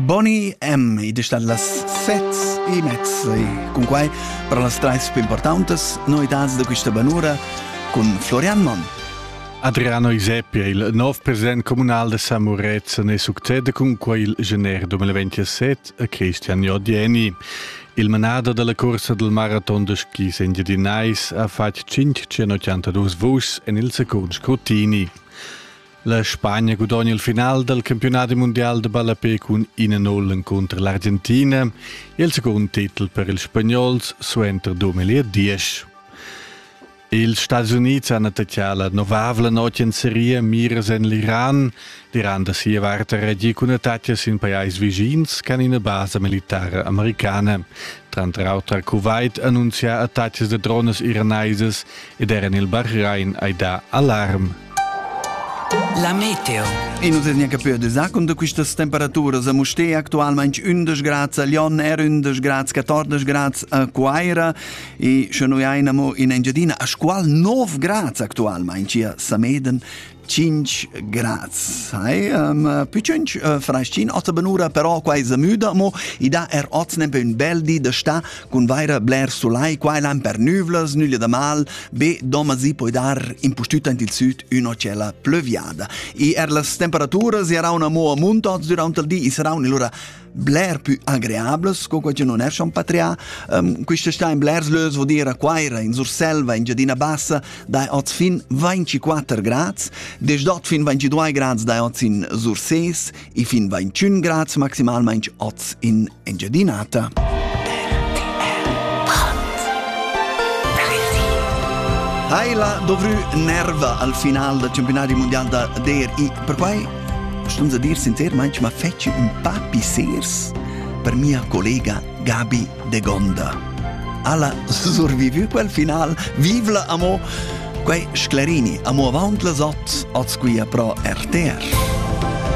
Bonnie M. id es stat las set e mezza e cun quai per las trais più importantes novidades da questa banura cun Florian Monn. Adriano Iseppi è il nov president comunal da San Murezzan e succede cun quai il gener 2027 a Christian Jodieni. Il manader della corsa del maraton de skis engiadinais ha fatg 582 vuschs en il secund scrutini. La Spagna gudogna il final dal campiunadi mundial da ballape cun ina null encunter l'Argentina e il secund titel per ils spagnols suenter 2010. Ils Stati Unids han attacchà la novavla notg en seria miras en l'Iran. L'Iran da sia vart ha reagì cun attacca sin pajais vischins con ina basa militare americana. Tranter auter Kuwait annuncia attacas da drones iranesas ed er en il Bahrain hai dà alarm. La meteo. E nu es neanche più de zacun da quistas temperaturas a Mustér actualmaing 11 grads a Lyon, er 11 grads, 14 grads a Quaira e sche noi aina mo in Engiadina a squal 9 grads actualmaing a Sameden Cinch grazie. Um, Piccinc uh, fraschin otta benura, però quai se müda, mo i dà er oz nempe un bel di da sta cun vaira bler sulai, quai l'han per nüvlas, nüglia da mal, be doma si poi dar impustüta in il süd üna cella plüviada. E er las temperaturas erano mo a munto durante il di, i saranno allora bler più agreables co che non è schon patrià um, questa sta in blers lös vuol dire a Quaira in Surselva in Giadina Bassa dai oz fin 24 grads des dort fin 22 grads dai oz in Surses e fin 21 grads maximalmente oz in Engiadinata Hai la dovru nerva al final del campionato mondiale da DRI per quai Stums a dir sincermaing ma fetschi ün pa pissers per mia collega Gabi de Gonda. Alla survivü quel final, vivla amo! Quai sclarini amo avant las ot, oz quia pro RTR.